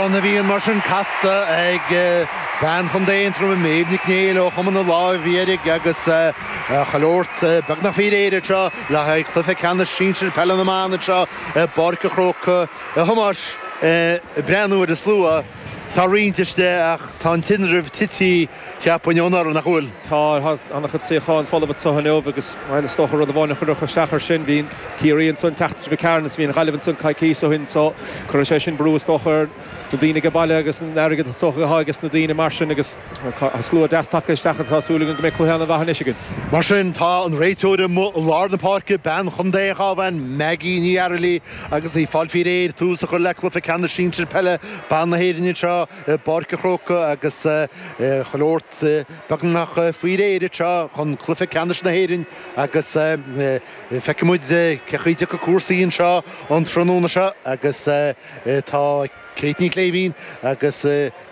Amhrán na bhFiann mar sin casta ag bean Chontae Aontroma, Méabh Nic Néill ó Chumann na Láimh Dhearg agus chuile shórt beagnach faoi réir anseo le haghaidh cluiche ceannais sinsir peile na mban anseo i bPáirc an Chrócaigh. A Thomáis, ag breathnú ar an slua, tá roinnt istigh ach tá an tinreamh titithe. Cheapfainn ó anuraidh nach bhfuil. Tá an-chuid suíochán folamh anseo inniu agus is dócha rud amháin a chuirfeadh isteach ar sin. Bhí Ciarraí anso an tseachtain seo, ghaibh tharainn, bhí an Ghaillimh anso coicíos ó shin so cuirfidh sé sin brú is dócha ar na daoine age baile agus an airgead is dócha atá ages na daoine mar sin agus tá slua deas tagtha isteach agus tá súil againn go mbeidh cluiche an-mhaith anois againn. Mar sin, tá an réiteoir amuigh i lár na páirce, bean Chontae an Chabháin, Maggie Ní Fhaircheallaigh agus í ag fáil faoi réir tús a chur le cluiche ceannais sinsir peile ban na hÉireann anseo. i bPáirc an Chrócaigh agus chuile shórt beagnach faoi réir anseo chun cluiche ceannais na hÉireann agus feicfidh muid cé chaoi a dtiocfaidh cúrsaí anseo an tráthnóna seo agus tá Kate Ní Shléibhín agus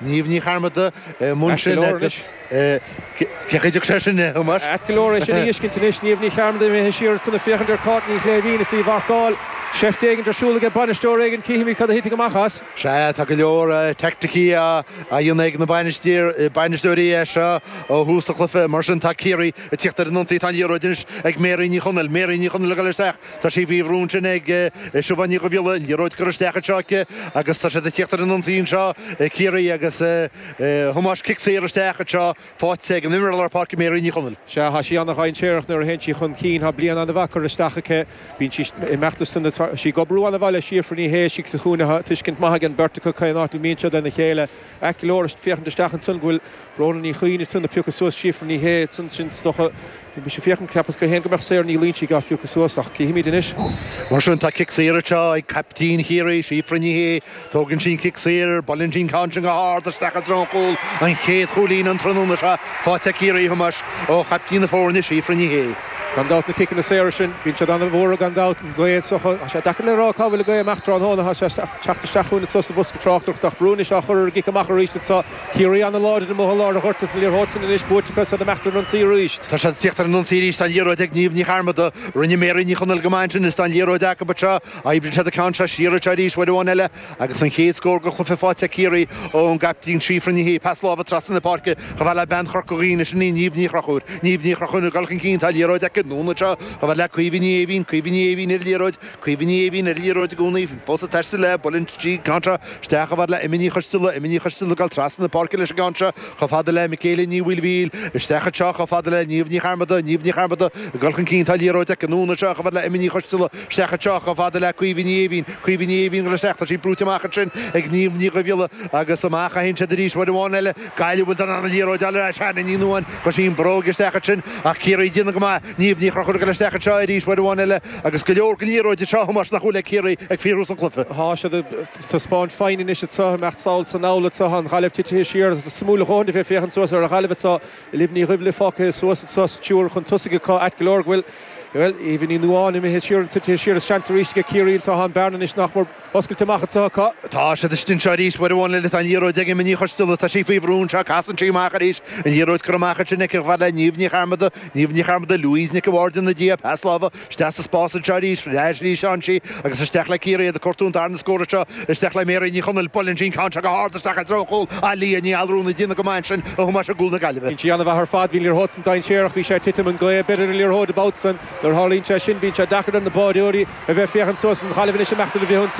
Niamh Ní Chearmada i mbun sin agus Féachaidh sé sin le húmar. Ait go leor é sin a fheiscint anois. Niamh Ní Chearmada imithe siar ansan ag féachaint ar Kate Ní Shléibhín is í á marcáil. Seift éigint ar siúl age bainisteoir éigin, cífimid cad a thitfidh amach as. Sea, tá go leor teaicticí á dhéanamh ag na bainisteoirí anseo ó thús an chluiche. Mar sin, tá Ciarraí ag tíocht ar an ionsaí. Tá an liathróid anois ag Mary Ní Chonaill. Mary Ní Chonaill ag dul isteach. Tá sí faoi bhrú ansin ag Siobhán Ní Dhuibhghiolla, liathróid curtha isteach anseo aici agus tá siad ag tíocht ar an ionsaí anseo, Ciarraí agus a Thomáis, cic saor isteach anseo faighte ag an imreoir lár páirce Mary Ní Chonaill. Sea, thá sí ana-dhainséarach nuair a théann sí chun cinn, thá bliain ana-mhaith curtha isteach aici, bíonn sí ag imeacht as san, thá sí ag obrú ana-mhaith le Síofra Ní Shé istigh sa chúinne, thá tuiscint maith ag an beirt acu cén áit a mbíonn siad lena chéile. Ait go leor, ag féachaint isteach ansan go bhfuil Bróna Ní Choinn ag tnúth le piocadh suas Síofra Ní Shé ansan. Sin, is dócha, bhí mise ag féachaint cheapas féin go mbeadh Sarah Ní Loingsigh á piocadh suas ach cífimid anois. Mar sin, tá cic saor anseo ag caiptín Chiarraí, Síofra Ní Shé. Tógann sí an cic saor, buaileann sí an ceann sin go hard isteach i dtreo an chúil, an chéad chúilín an tráthnóna seo faighte ag Ciarraí a Thomáis ó chaiptín na foirne, Síofra Ní Shé. Gan dabht na ciceanna saora sin, bíonn siad an-mhór gan dabht, an gaoth anseo. Tá sé deacair le rá cá bhfuil an gaoth amach tráthnóna, tá sé ag teacht isteach chugainn anseo sa bhosca. tráchtaireacht ach brú anois á chur ar an gcic amach arís anseo. Ciarraí an-láidir amuigh i lár an ghoirt is an liathróid sin anois, buaite acu is iad ag imeacht ar an ionsaí arís. Tá siad ag tíocht ar an ionsaí arís, tá an liathróid ag Niamh Ní Chearmada. Rinne Mary Ní Chonaill go maith ansin is tá an liathróid acu anseo. Oibríonn siad an ceann seo siar anseo arís, uair amháin eile agus an chéad scór den chluiche faighte ag Ciarraí ón gcaiptín Síofra Ní Shé. Pas láimhe trasna na páirce chomh fada le bean Chorca Dhuibhne, sin í Niamh Ní Chonchúir. Niamh Ní Chonchúir ag dul chun cinn, tá an liathróid aici anonn anseo chomh fada le Caoimhe Ní Eimhín. Caoimhe Ní Eimhín ar an liathróid. Cuimhní a bhíonn ar liathróid i gcónaí, fós ag taisteal léi buaileann sí an ceann seo isteach chomh fada le Emma Ní Choisteala, Emma Ní Choisteala ag dul trasna na páirce leis an gceann seo chomh fada le Mikaela Ní Mhaoilmhichíl, isteach anseo chomh fada le Niamh Ní Chearmada, Niamh Ní Chearmada ag dul chun cinn, tá an liathróid aici an uair seo chomh fada le Emma Ní Choisteala, isteach anseo chomh fada le Caoimhe Ní Éimhín, Caoimhe Ní Éimhín ag dul isteach, tá sí brúite amach ansin ag Niamh Ní Dhuibhghiolla agus amach anseo arís uair amháin eile, Gaillimh a bhfuil don liathróid le Hannah Ní Nuadháin, chuir sí an bhróig isteach ansin ach Ciarraí ag déanamh go maith, Niamh Ní Chonchúir ag dul isteach anseo arís uair amháin eile agus go leor den liathróid anseo, a Thomáis, nach bhfuil ag Ciarraí go fíorluath san chluiche. Tá siad ag taispeáint foighne anois anseo, ag imeacht sall is anall anseo, an Ghaillimh titithe siar, suimiúil a dhóthain a bheith ag féachaint suas ar an Ghaillimh anseo, Olivia Ní Dhuibhghiolla fágtha suas anseo sa triúr chun tosaigh acu, ait go leor go bhfuil, bhuel, Eva Ní Nuadháin imithe siar, titithe siar is seans arís aige Ciarraí anseo, an bhearna anois nach mór. Oscailte amach anseo acu. Tá siad istigh anseo arís. Uair amháin eile tá an liathróid ag Emma Ní Choisteala. Tá sí faoi bhrú anseo. Casann sí amach arís. An liathróid curtha amach ansin aici chomh fada le Niamh Ní Chearmada. Niamh Ní Chearmada, Louise Nic an Bhaird ina diaidh. Pas láimhe isteach sa spás anseo arís. Sleamhnaíonn sí agus isteach le Ciarraí ag cuardach an tarna scór anseo. Isteach le Mary Ní Chonaill. Buaileann sí an ceann seo go hard isteach i dtreo an chúil. Leah Ní Allmhuráin ag déanamh go maith ansin a Thomáis i gcúl na Gaillimhe. Dhein sí an-mhaith ar fad. Bhí an liathróid san dainséarach. Bhí sé ag titim. An ghaoth ag breith ar an liathróid an babhta san. Nuair a tharlaíonn sé sin bíonn sé deacair ar na báireoirí a bheith ag féachaint suas an Ghaillimh anois ag imeacht ar an bhfrithionsaí.